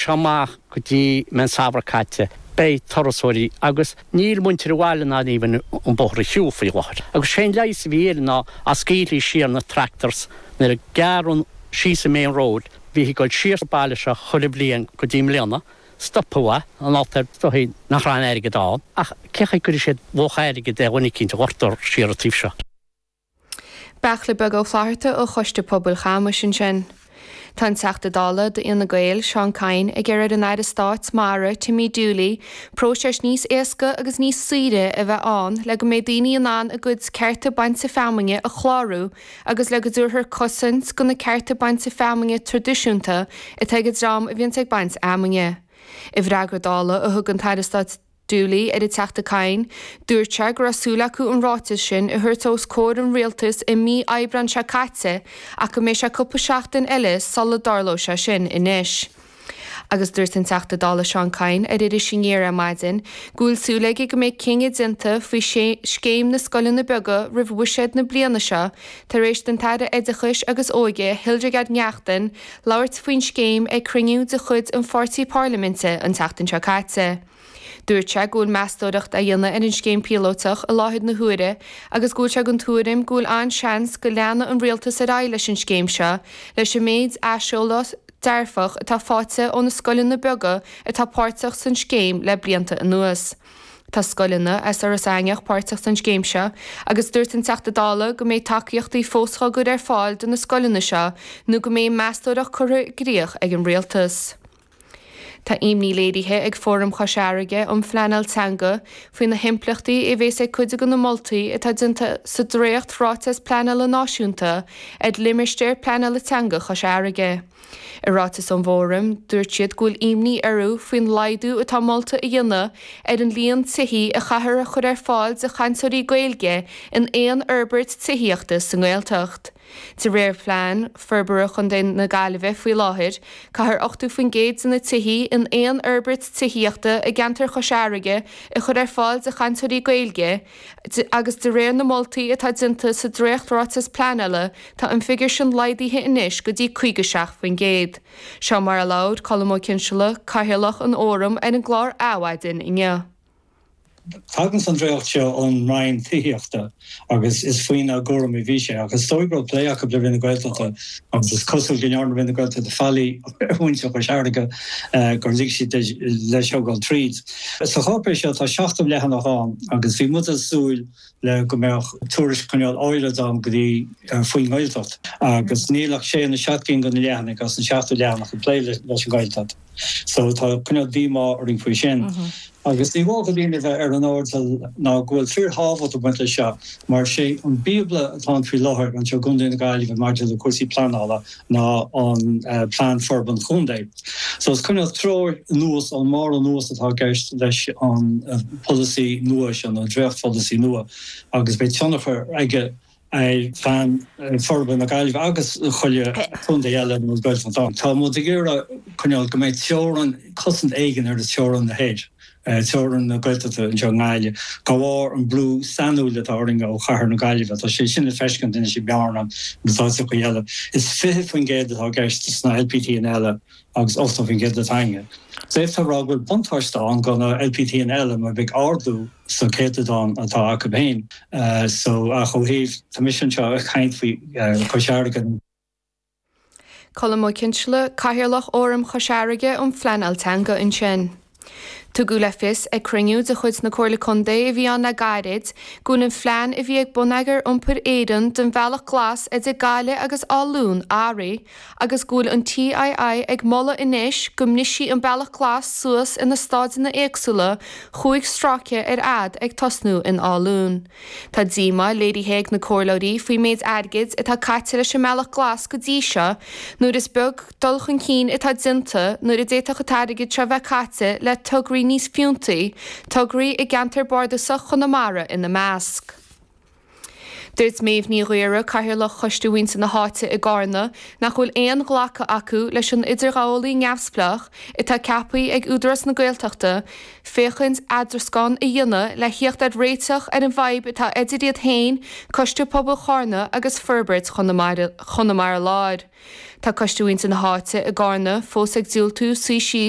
seo amach go dtí mbeidh an samhradh caite. Beidh turasóirí agus níl muintir an bhaile in ann fiú amháin an bóthar a shiúl faoi láthair. Agus sé'n leigheas a bhí air ná a' scaoileadh siar na tractors nuair a gearran síos an main road, bhíthí ag dul siar sa baile seo chuile bhliain go dtí mbliana, stopadh a, an alt ar is dóigh nach raibh a'n airgead ann ach cé chaoi gcuirfidh siad luach airgid ar dhuine eicínt a ghortú siar a' taobh seo. Beachla Beag Ó Flatharta ó Choiste Pobail Chamuis ansin. Tá an Teachta Dála d'Fhine Gael, Seán Kyne, ag iarraidh ar an Aire Stáit Mara, Timmy Dooley, próiseas níos éasca agus níos saoire a bheith ann le go mbeidh daoine in ann a gcuid cearta bainte feamainne a chlárú agus le go dtabharfar cosaint do na cearta bainte feamainne traidisiúnta atá ag an dream a bhíonns ag baint fheamainne. I bhfreagra Dála a thug an tAire Stáit. Dooley ar an Teachta Kyne. Dúirt sé go raibh súil acu an ráiteas sin a thabhairt os comhair an Rialtais i mí Aibreáin seo caite ach go mbeidh sé cúpla seachtain eile sula dtarlóidh sé sin anois. Agus dúirt an Teachta Dála Seán Kyne ar Iris Aniar ar maidin go bhfuil súil aige go mbeidh cinneadh déanta faoi Scéim na Scoileanna Beaga roimh bhuiséad na bliana seo tar éis don tAire Oideachais agus Óige Hildegarde Neachtain labhairt faoin scéim ag cruinniú de chuid an pháirtí parlaiminte an tseachtain seo caite. Dúirt sé go bhfuil meastóireacht á dhéanamh ar an scéim phíolóiteach i láthair na huaire agus go bhfuil sé den tuairim go bhfuil an-seans go leanfaidh an Rialtas ar aghaidh leis an scéim seo leis an méid aiseolas dearfach atá faighte ó na scoileanna beaga atá páirteach san scéim le blianta anuas. Tá scoileanna as Iorras Aithneach páirteach san scéim seo agus dúirt an Teachta Dála go mbeidh tacaíochtaí fós á gcur ar fáil do na scoileanna seo nó go mbeidh meastóireacht curtha i gcrích ag an Rialtas. Tá imní léirithe ag Fóram Chois Fharraige um Phleanáil Teanga faoi na himpleachtaí a bheas ag cuid de na moltaí atá déanta sa Dréacht Ráiteas Pleanála Náisiúnta ar Limistéar Pleanála Teanga Chois Fharraige. I ráiteas ón bhFóram, dúirt siad go bhfuil imní orthu faoin laghdú atá molta a dhéanamh ar an líon tithí a chaithfear a chur ar fáil do chainteoirí Gaeilge in aon fhorbairt tithíochta sa nGaeltacht. De réir phlean forbartha Chontae na Gaillimhe faoi láthair, caithfear 80% de na tithí in aon fhorbairt tithíochta i gceantar Chois Fharraige a chur ar fáil do chainteoirí Gaeilge agus de réir na moltaí atá déanta sa dréacht-ráiteas pleanála tá an figiúr sin laghdaithe anois go dtí 57%. Seo mar a labhair Colm Ó Cinnseala, Cathaoirleach an Fhóraim ar an gclár Adhmhaidin inniu. Tagann an dréacht seo ón Roinn Tithíochta agus is faoina gcúram a bhí sé. Ach is dóigh go raibh plé acu le Roinn na Gaeltachta agus is cosúil go ndearna Roinn na Gaeltachta faillí ar mhuintir Chois Fharraige gur lig siad leis seo a dhul tríd. Sa cháipéis seo tá 70 leathanach ann agus bhí muid ag súil le go mbeadh tuairisc chineál áirid ann go dtí faoin nGaeltacht agus níl ach sé nó seacht gcinn de na leathanaigh as an 70 leathanach ag plé leis an Ghaeltacht. So tá cineál díomá orainn faoi sin. Agus ní mór do dhaoine a bheith ar an airdeall ná go bhfuil fíorthábhacht ag baint leis seo mar sé an bíobla atá ann faoi láthair anseo i gContae na Gaillimhe maidir le cúrsaí pleanála ná an Plean Forbartha an Chontae. So is cineál treoir anuas ón mbarr anuas atá i gceist leis an pholasaí nua seo, nó an dréachtpholasaí nua, agus beidh tionchar aige, ar Phlean Forbartha na Gaillimhe agus chuile chontae eile a bhfuil Gaeltacht ann. Tá muid ag iarraidh cineál go mbeidh teorainn, cosaint éigin ar theorainn na thoir, teorainn na Gaeltachta anseo i nGaillimh, de bharr an brú sainiúil atá orainn ó chathair na Gaillimhe. Tá sé sin le feiscint anois i mBearna agus áiteachaí eile. Is 20% atá i gceist sna LPTanna eile agus 80% atá againne. D'fhéadfá a rá go bhfuil buntáiste ann do na LPTanna eile mar beidh ardú, sa chéatadán atá acu féin so ach ó thaobh tá mise anseo ag caint faoi Chois Fharraige. Colm Ó Cinnseala, Cathaoirleach Fhóram Chois Fharraige um Phleanáil Teanga ansin. Tugadh le fios ag cruinniú de chuid na Comhairle Contae a bhí ann le gairid go bhfuil an phlean a bhí ag Bonneagar Iompair Éireann don Bhealach Glas idir Gaillimh agus Áth Luain athraithe agus go bhfuil an TII ag moladh anois go mbrisfí an Bealach Glas suas ina stáideanna éagsúla chúig stráice ar fhad ag tosnú in Áth Luain. Tá díomá léirithe ag na comhairleoirí faoin méid airgid atá caite leis an mBealach Glas go dtí seo nuair is beag dul chun cinn atá déanta nuair a d'fhéadfadh an t-airgead seo bheith caite le tograí níos fiúntaí, tograí i gceantar bardasach Chonamara ina measc. Dúirt Méabh Ní Ghaora, Cathaoirleach Choiste Mhuintir na hÁite i gCarna, nach bhfuil aon ghlacadh acu leis an idirghabhálaí neamhspleách atá ceaptha ag Údarás na Gaeltachta féachaint eadrascán a dhéanamh le theacht ar réiteach ar an bhfadhb atá idir iad féin, Coiste Pobail Charna agus Forbairt Chonamara Láir. Tá Coiste Mhuintir na hÁite i gCarna fós ag diúltú suí síos.